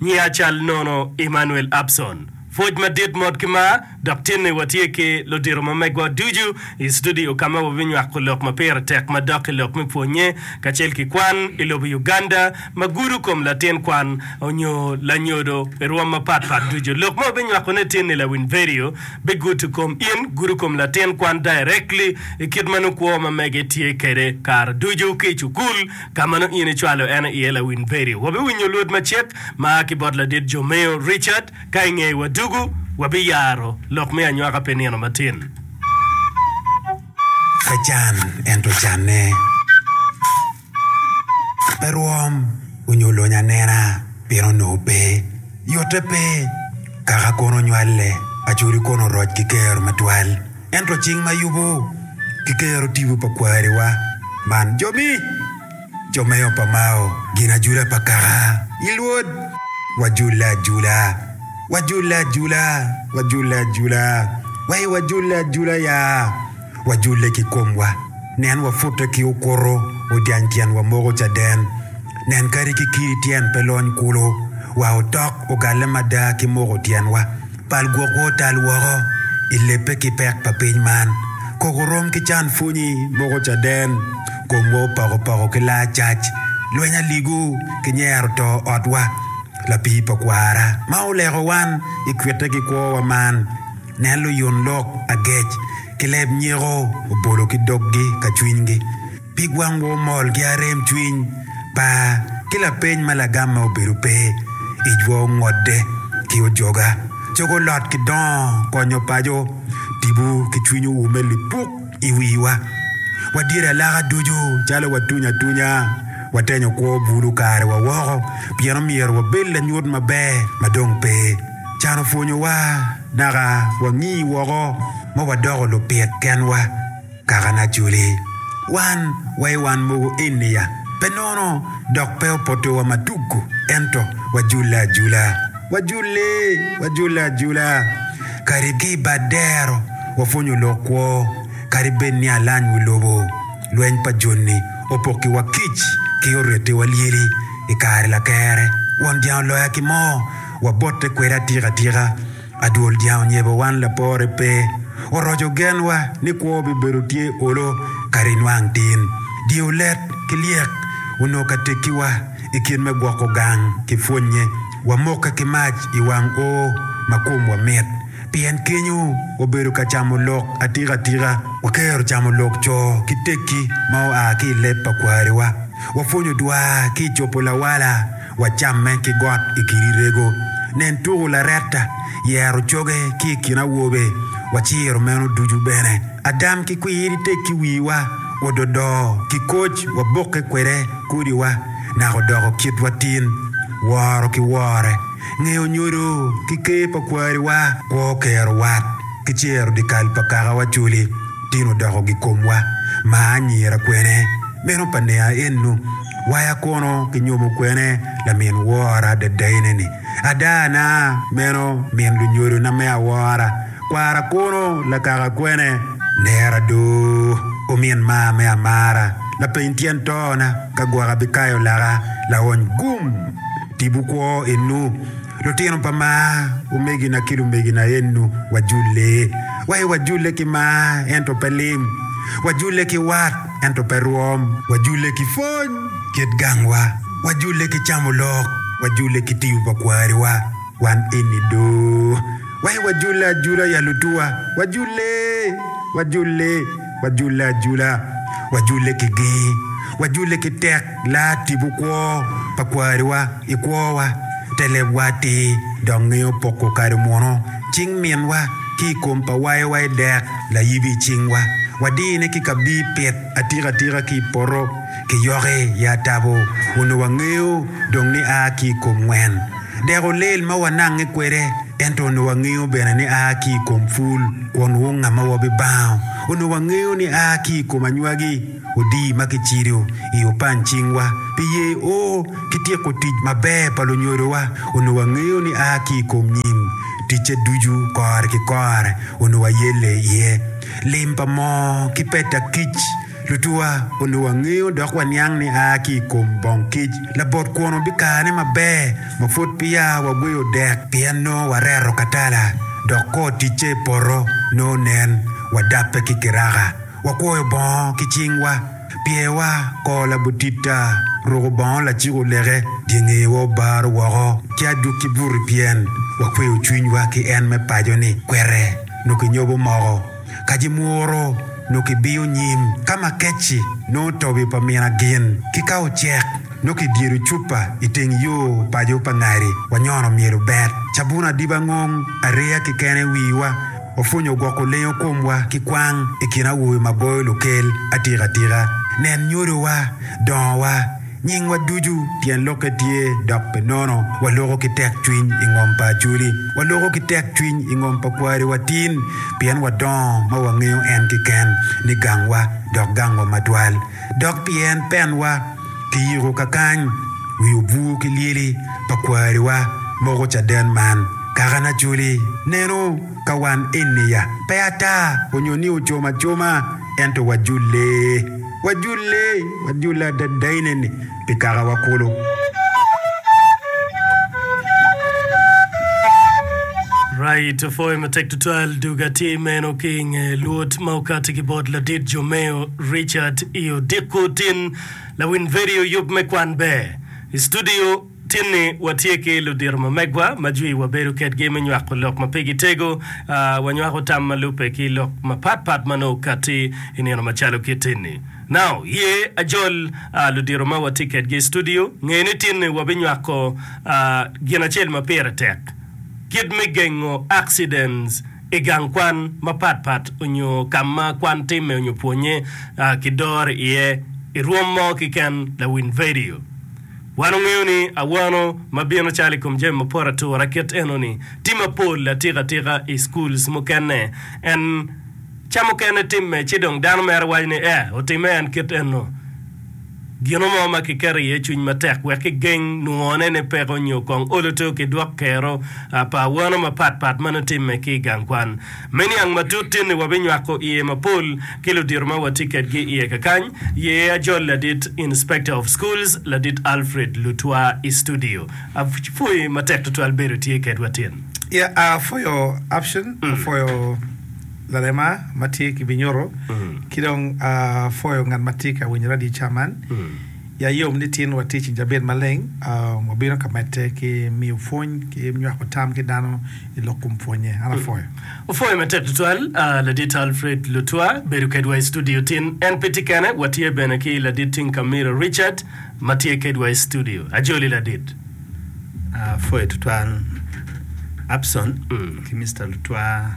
Nya cal nono Emmanuel Abson. Pwoc madit mot ki mar dok tinni watye ki ludito ma megwa ducu i studio ka ma wabinywako lok ma pire tek madok i lok me pwonye kacel ki kwan i lobo Uganda ma gudo kom latin kwan onyo lanyodo i rwom mapat pat ducu. Lok ma wabinywako ne tinni lawiny vedio bigudo kom in gudo kom latin kwan directly i kit ma nukwo ma mege tye kede kare ducu ki i cukul Ka mano in icwalo en iye lawiny peri. Wabiwinyo luot macek ma a ki bot ladit jo meyo Richard ka ingeye wa dugu. Wabiyaro lok me anywaka pi nino matin. Pe can ento canne. Pe rwom onyo lony anena pien onongo pe. Yote pe. Kaka kono onywale, acodi kono oroc ki kero matwal. Ento cing ma yubo kikero tipo pa kwariwa man jomi, jo me opa mao, gin ajula pa kaka i Lwod. Wajule ajula, wajule ajula, wajule ajula, wai wajule ajula ya, wajule ki komwa, nen wapute ki okuto, odyany tyenwa moko caden, nen kadi ki kidi tyen pe lony kulu, wa otok ogalle mada ki moko tyenwa, Bal gwokwa otal woko i lebbe ki pek pa piny man. Kok orom ki can pwonyi moko caden. Komwa opoko poko ki laa cac. Lweny aligu ki nyero to otwa. Lapii pa kwara ma oleko wan i kwitte ki kwowa man. Nen luyun lok agec ki leb nyeko obolo ki doggi ka cwinygi. Pig wang wo mol gi arem cwiny pa ki lapeny ma lagam ma obedo pe ijwa ongodde ki ojoga. Cogo lot ki dongo konyo paco tibu ki cwiny oume lipuk iwiwa. Wa dyere alaka ducu calo wa tunya atunya wa tenyo kwo bulu kare wa woko pien omyero wa bed lanyut maber ma dong pe can opwonyo wa naka wa ngi woko ma wa doko lupit kenwa. Kaka na culi wan wa i wan mogo eni ya pe nono dok pe opoto wa ma tugu ento wa jule ajula. Wa jule, wa jule ajula. Kadi ki i bad dero wa pwonyo lok kwo kadi bed ni alany wi lobo lweny pa joni opoki wa kic ki oreti wa lyeli i kare lakere won jang oloya ki mo wa bote kwede atika tika. Adwol jang onyebo wan lapore pe oroco genwa ni kwo bibedo tye olo kare inwang tin. Dyeyo let ki lyek onongo ka tekkiwa i kin me gwoko gang ki pwonnye. Wamokke ki mac i wang o ma komwa mit pien kenyo wabedo ka camo lok atika tika. Wakero camo lok co ki tekki ma oa ki i leb pa kwariwa. Wapwonyo dwar ki i copo lawala. wacamme ki got i kidi rego. Nen tuku laretta, yero coge ki i kin awobe, waciro meno ducu bene. Agam ki kwir itek ki wiwa, ododo ki koc wabokke kwede kodiwa, naka odoko kitwa tin. Woro ki wore, ngeyo nyodo ki ker pa kwariwa, kwo kero wat, ki cero dikal pa kakawa coli, tin odoko gikomwa. Maa anyira kwene, meno pa nia ennu. Waya kono kinyomo kwene lamin wora dadaine-ni. Ada na, meno min lunyodona me awora. Kwara kono lakaka kwene. Nera do, omin maa me amara. Lapeny tyen tona, ka gwaka bikayo laka, laony gum! Tibu kwo inu. Lutino pa mar, omegina ki lumegina ennu, wajulle. Waye wajulle ki mar, ento pe lim. Wajulle ki wat, ento pe rwom. Wajulle ki pwony kit gangwa. Wajulle ki camo lok. Wajulle ki tiyo pa kwariwa. Wan eni do. Waye wajulle ajula ya lutuwa. Wajulle! Wajulle! Wajule ajula, wajule ki gee, wajule ki tek laa tibu kwo pa kwariwa i kwowa, te lebwa atir dok ngeyo poko kado muno cing minwa ki i kom pa wayowa i dek layibi cingwa, wadine ki ka bii pit atika tika ki i poto. ki yoki i atabo onongo wangeyo dong ni a ki i kom wen. Deko lel ma wanange kwede, ento onongo wangeyo bene ni a ki i kom pul kwon wunga ma wabibango. Onongo wangeyo ni a ki i kom anywagi odii ma kicido i opany cingwa pi yeo ki tyeko tic maber pa lunyodowa. Onongo wangeyo ni a ki i kom nyim ticce ducu kore ki kore onongo wayelle iye. Lim pa moo ki peta kic. Lutuwa onongo wangeyo dok waniang ni a ki i kom bong kic labot kwon obikane maber ma pwod peya wagweyo dek pien nongo wareto katala dok kor ticce i poto nongo nen. Wadabbe ki kiraka, wakwoyo bongo ki cingwa, pyewa kor labutitta, ruko bongo laciko leke, dyengewa obaro woko ki adukki buti pien wakweyo cwinywa ki en me paco-ni kwete nongo kinyobo moko. Ka ji mwuro, nongo kibiyo nyim ka ma kec-ci nongo tobi pa mina gin, ki ka ocek, nongo kidyedo cupa i teng yo paco pa ngari wa nyono myelo bet. Cabun adiba ngong areya kekene i wiwa opwonyo gwoko lengo komwa ki kwang i kin awobe ma goyo lukel atika atika. Nen nyodowa, dongowa, Nyingwa ducu tyen lokke tye dok pe nono. Waloko ki tekcwiny i ngom pa Acholi. Waloko ki tekcwiny i ngom pa kwari wa tin, pien wadongo ma wangeyo en keken ni gangwa dok gangwa matwal. Dok pi en penwa ki yiko kakany wi obwur ki lyeli pa kwariwa moko caden man. Kakane Acholi neno ka wan eni ya pe ata onyo ni ocom acoma ento wajule. Wajule, wajule adada ineni pi kakawa kulu. Right, opwoyo matek tutwal dog atir meno ki i nge luot ma okati ki bot ladit Jomeo Richard i odiko tin lawiny vedio yub me kwan ber. I studio Tinni watye ki ludito ma megwa ma jwi wabedo kedgi me nywako lok ma pigi tego. Wanywako tam ma lubbe ki lok mapat pat ma nongo katti i nino macalo kit tinni. Now, ye ajol ludito ma watye kedgi i studio, nge ni tinni wabinywako gin acel ma pire tek, kit me gengo accidents i gang kwan mapat pat onyo ka ma kwan timme onyo pwonye ki doro iye i rwom mo kiken lawiny vedio. Wan ongeyo ni awano ma bino calo i kom jami mapot atura kit enoni tye mapol atika atika i schools mukene and ca mukene timme ci dong dano mere waco ni eh otimme and kit eno gino mo ma ki keto iye cwiny matek wek ki geng nwo ne ne peko nyo kong olo to ki dwok kero pa awano mapat pat ma nongo timme ki i gang kwan. Me niang matut tinni wabinywako iye mapol ki ludito ma watye kedgi iye kakany, ye ajol ladit Inspector of Schools, Ladit Alfred Lutwa i studio. Apwoyi matek tutwal bedo tye kedwa tin. Yeah, uh, for your option, mm. for your lalema ma tye ki binyuto, mm. ki dong uh, for your ngat ma tye ka winyo radio ca man, mm. Ya yom ni tin watic i jabit maleng. Wabino ka medde ki miyo pwony ki nywako tam ki dano i lok kom pwonye. An apwoyo. Opwoyo matek tutwal. Ladit Alfred Lutwa bedo kedwa i studio tin. En pe tye kene, watye bene ki Ladit Tinkamira Richard ma tye kedwa i studio. Ajoli Ladit. Apwoyo tutwal Abson ki Mister Lutwa.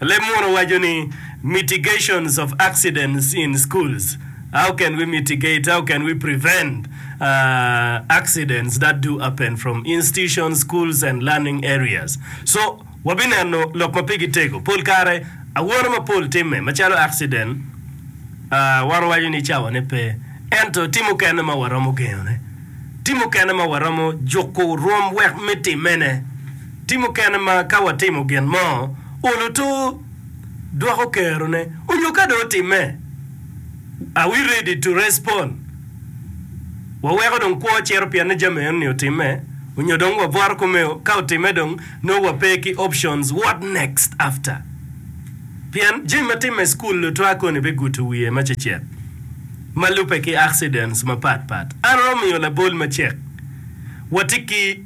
Leb muno waco ni, Mitigations of Accidents in Schools, How Can We Mitigate, How Can We Prevent, uh, Accidents That Do Happen From Institutions, Schools, and Learning Areas? Co, Wabineno lok ma pigi tego. Pol kare, awono mapol timme, macalo akciden, uh, wan wawaco ni cawane pe. Ento tye mukene ma waromo gengone. Tye mukene ma waromo juko rwom wek me timmene. Ti mukene ma ka watimo gin mo, olo tur, dwoko kerone, onyo ka dong otimme, are we ready to respond? Waweko dong kwo cito pien ni jami eno ni otimme, onyo dong wabwaro kome o? Ka otimme dong nongo wa pe ki options what next after? Pien jami ma timme i school lutwa koni be guto wiye ma cecek ma lube ki accidents ma pat pat. An oromo miyo labol ma cek wati ki.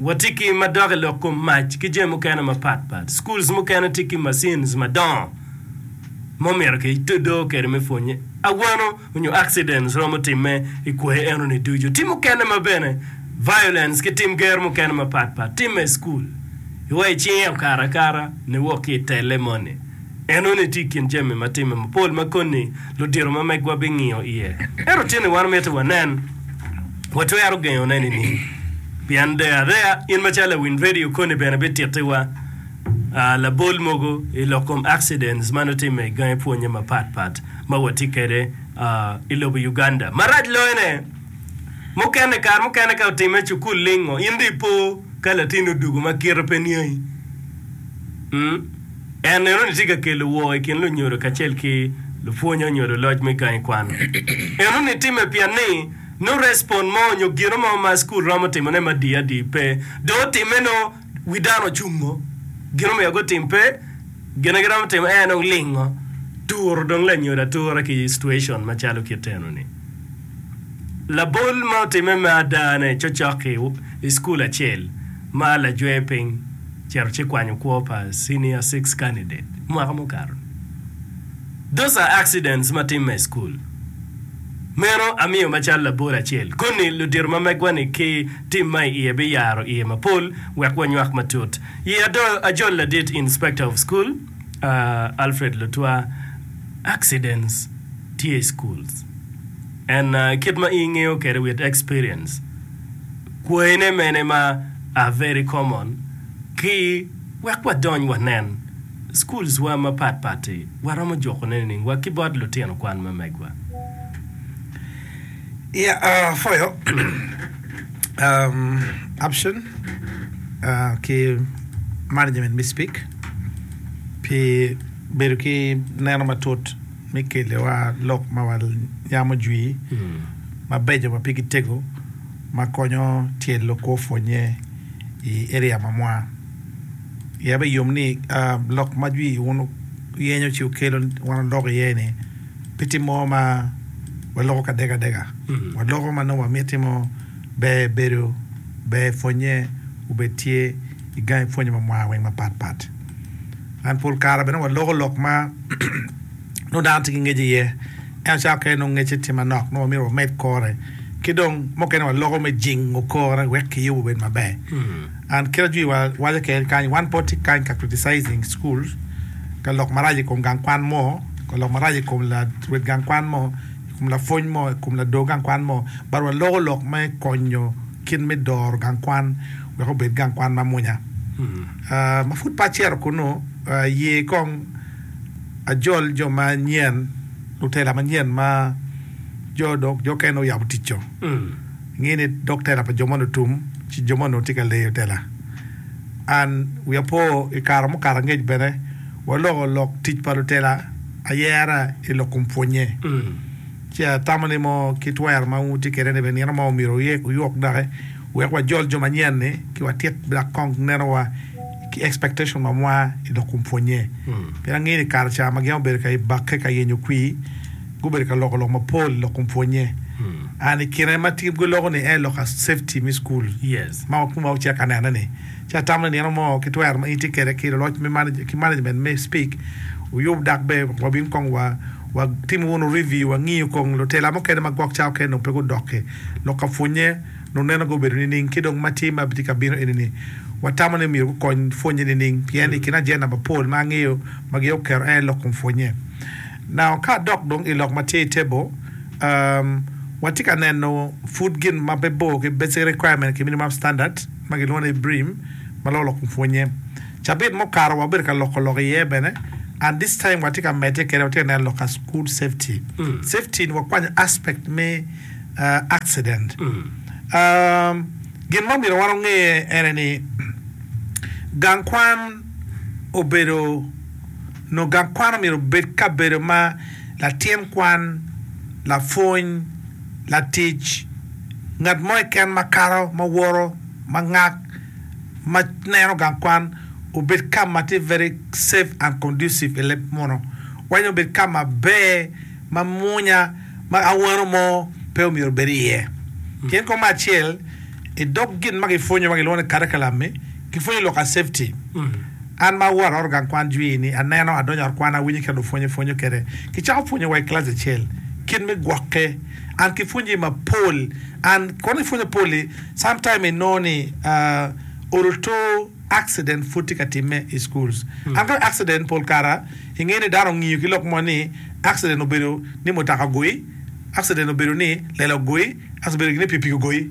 Watye ki madok i lok kom mac ki jami mukene mapat pat. Schools mukene tye ki machines madongo ma omyero ki tudo kwede me pwonye. Awano onyo accidents romo time i kwoyo eno ni ducu. Tim mukene ma bene violence ki tim ger mukene mapat pat time i school. Iwa icinge okato akata ni wok ki i tele moni. Enoni tye i kin jami ma timme mapol ma koni ludito ma megwa bingiyo iye. Ento tyen ni wan miti wanen? Watwero gengone nining? Pien deyo adeya, in macalo lawiny redio koni bene bitittiwa labol mogo i lok kom accidents ma nongo timme i gangi pwonye mapat pat ma watye kwede i lobo Uganda. Marac loyone, mukene kare mukene ka otimme i cukul lingo, in dong ipo ka latinni odugo ma kite pe niangi. En enoni tye ka kelo woo i kin lunyodo kacel ki lupwonye onyo luloc me gangi kwan. Enoni timme pien ni nongo respond mo onyo gino mo ma cukul romo timo ne madii adii pe. Dong otimme nongo wi dano ocungo, gin omiyo gutim pe, gine giromo timo en nongo lingo, turo dong lanyodo atura ki situation macalo kit enoni. Labol ma otimme me ada-ne cocok ki i cukul acel ma lajwe piny cito ci kwanyo kwo pa Senior Six Candidate mwaka mukato. Those are accidents ma timme i cukul. Meno amiyo macalo labol acel koni ludito ma megwa-ni ki tim ma iye biyaro iye mapol wek wanywak matut. Ye ado ajol ladit Inspector of School. Alfred Lutwa, Accidents tye i schools and kit ma in ngeyo kede with experience, kwayine mene ma are very common ki wek wadony wanen schools wa mapat pat-ti waromo juko ne nining wa ki bot lutino kwan ma megwa? Yeah, for your option ki management me speak. Pi bedo ki neno matut me keliwa lok ma wanyamo jwi mabeco ma pigi tego ma konyo tyelo kwo pwonnye i eria ma mwa. Ya be yom ni lok ma jwi wun wuyenyo ci wukelo wan waloko iye ni pe tye mo ma waloko ka dega dega. Waloko ma nongo wamiti mo ber bedo ber pwonnye obed tye. i gangi pwonye ma mwaka weng mapat pat and pol kare bene wa loko lok ma nongo dano tye ki ngec i ye ento cawa mukene nongo ngece tye manok nongo myero wamed kore ki dong mukene wa loko me jingo kore wek ki yubo obed maber hmm. and kit ajwi wa waco kene kany wan po tye kany ka criticizing school ka lok marac i kom gang kwan mo ka lok marac i kom la wet gang kwan mo i kom la pwony mo i kom la do gang kwan mo but wa loko lok me konyo Kit me doro gang kwan wek obed gang kwan mamwonya ma pud pe acito kunnu, aye kong ajol jo manyen, lutela manyen ma jo okene oyabo tic-co. Ngi ni dok tela pa jo moni otum ci jo moni onongo tye ka leyo tela. An wiya po i kare mukato angec bene waloko lok tic pa lutela ayera i lok kom pwonnye. Ci atamo ni mo ki twero ma wutye kwede ni bene nino mo myero wuye ki yok doki wek wajol jo manyen-ni ki watit dok kong nenowa ki expectation ma mwa i dog kom pwonnye. Pien angeyo ni i kare ca ma gin gubedo ka bakke ka yenyo kwir, gubedo ka loko lok mapol i dog kom pwonnye. And i kine ma tye giloko-ni en lok ka safety me cukul ma wakun-wa wucek ka nene-ni. Ci atamo ni nino mo ki twero ma in itye kwede ki luloc ki management me SPIC wuyub dok ber wabin kong watimo wunu review wangiyo kong lutela mukene ma gwok cawa kene dong pe gudoki lok ka pwonye nung neno gubedo nining ki dong ma tye ma tye ka bino enini watamo ni myero gukony pwonye nining pien i kin ajenda mapol ma angeyo ma gin oketo en aye lok kom pwonye. Now ka adok dong i lok ma tye i table umm watye ka neno pud gin ma pe bor ki basic requirement ki minimum standard. ma gilwongo ni Ibrim ma loko lok pwonye. Cabit ma okato wabedo ka loko lok iye bene and this time watye ka medde kwede watye ka neno lok ka school safety. Safety ni wakwanyo aspect me uh, accident. Um, gin ma omyero wan onge ene ni gang kwan obedo Nongo gang kwan omyero obed kabedo ma latin kwan, lapwony, latic, ngat mo keken ma kato, ma woto, ma ngak, ma neno gang kwan obed ka ma tye very safe and conducive i leb muno. Wacci obed ka maber, mamwonya, ma awano mo pe omyero obed iye. Pien kong me acel, i dog gin ma gipwonyowa gilwongo ni curriculum-mi, gipwonyo lok a safety. An ma awot aoto gang kwan jwi ni, aneno, adonyo ot kwan, awinyo kit lupwony epwonyo kede. Kicako pwonyo wa i kilaci acel kit me gwokke. An ki pwonye mapol and kono ipwonyo pol i some time inongo ni odo to accident pwod tye ka time i schools. An kono accident pol kara inge ni dano ongiyo ki lok mo ni accident obedo ni mutaka ogoyi, accident obedo ni lela ogoyi, accident obedo gin ni pikipiki ogoyi.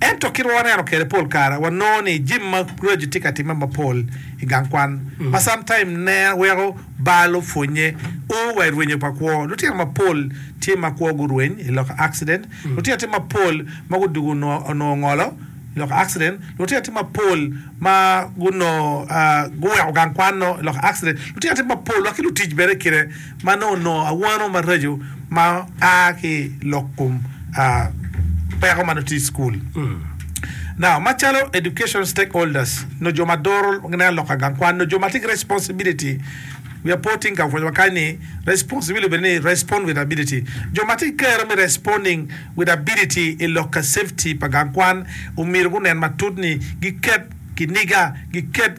Ento kit ma waneno kwede pol kare, wanongo ni jami ma kuraji tye ka timme mapol i gang kwan ma sometime nen weko baa lupwonnye o wa i rwenyo pa kwo. Lutino mapol tye ma kwo gurweny i lok accident, lutino tye mapol ma gudwogo onongo ngolo i lok accident, lutino tye mapol ma gunongo guweko gang kwan-nu i lok accident, lutino tye mapol wa ki lutic bene kite. ma nongo onongo awano maraco ma a ki i lok kom peko ma nongo tye i cukul. Now, macalo education stakeholders, nongo jo ma doro gineno lok ka gang kwan, nongo jo ma tye ki responsibility, we are putting ka pwonyowa kany ni responsibility obedo ni respond with ability. Jo ma tye ki kero me responding with ability i lok ka safety pa gang kwan omyero gunen matut ni giket kiniga, giket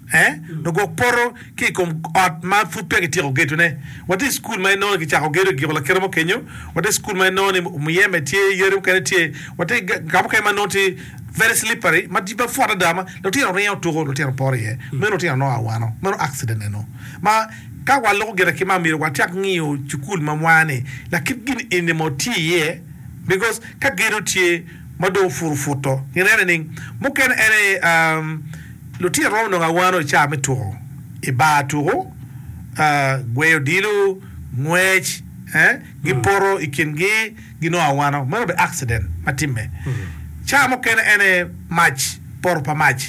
Lugwok poto ki i kom ot ma pud peya kityeko gedone. Watye i cukul ma inongo ni kicako gedo i giko lakite mo kenyo. Watye i cukul ma inongo ni muyeme tye, yadi mukene tye. Watye ka mukene ma nongo tye very slippery, ma pwot adada ma lutino ringo tuko, lutino poto iye. Meno lutino nongo a wano. Meno accident eno ma ka waluko gire ki man myero wacak ngiyo cukul ma mwani lakit gin eni mo tye iye because ka gedo tye. ma dong puru puto. Ineno nining? Mukene en aye, lutino romo nongo awano i caa me tuko i bar tuku, gweyo odilo, ngwec, gipoto i kingi ginongo awano. Meno obedo accident ma timme. Caa mukene en aye mac, poto pa mac.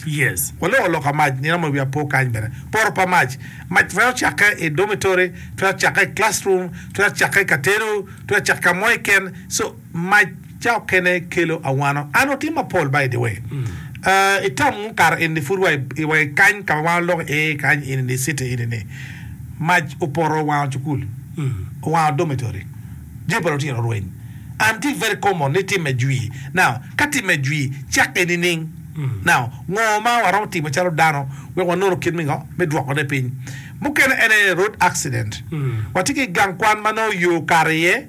Waloko loka mac, nino mo i wi apo kany bene. Poto pa mac, mac twero cakke i dormitory, twero cakke i classroom, twero cakke i katedo, twero cakke ka mo keken. Mac caokene kelo awano. An otim mapol by the way uh itam mukato enini pud wa wa i kany kama wan waloko i ee kany enini city enini mac opoto owango cukul owango dormitory jami pa lutino orweny and tye very common ni time jwi now ka time jwi cakke nining now ngo ma waromo timo calo dano wek wanono kit me ngo me dwoko ne piny mukene ene road accident watye ki gang kwan manongo yoo okato iye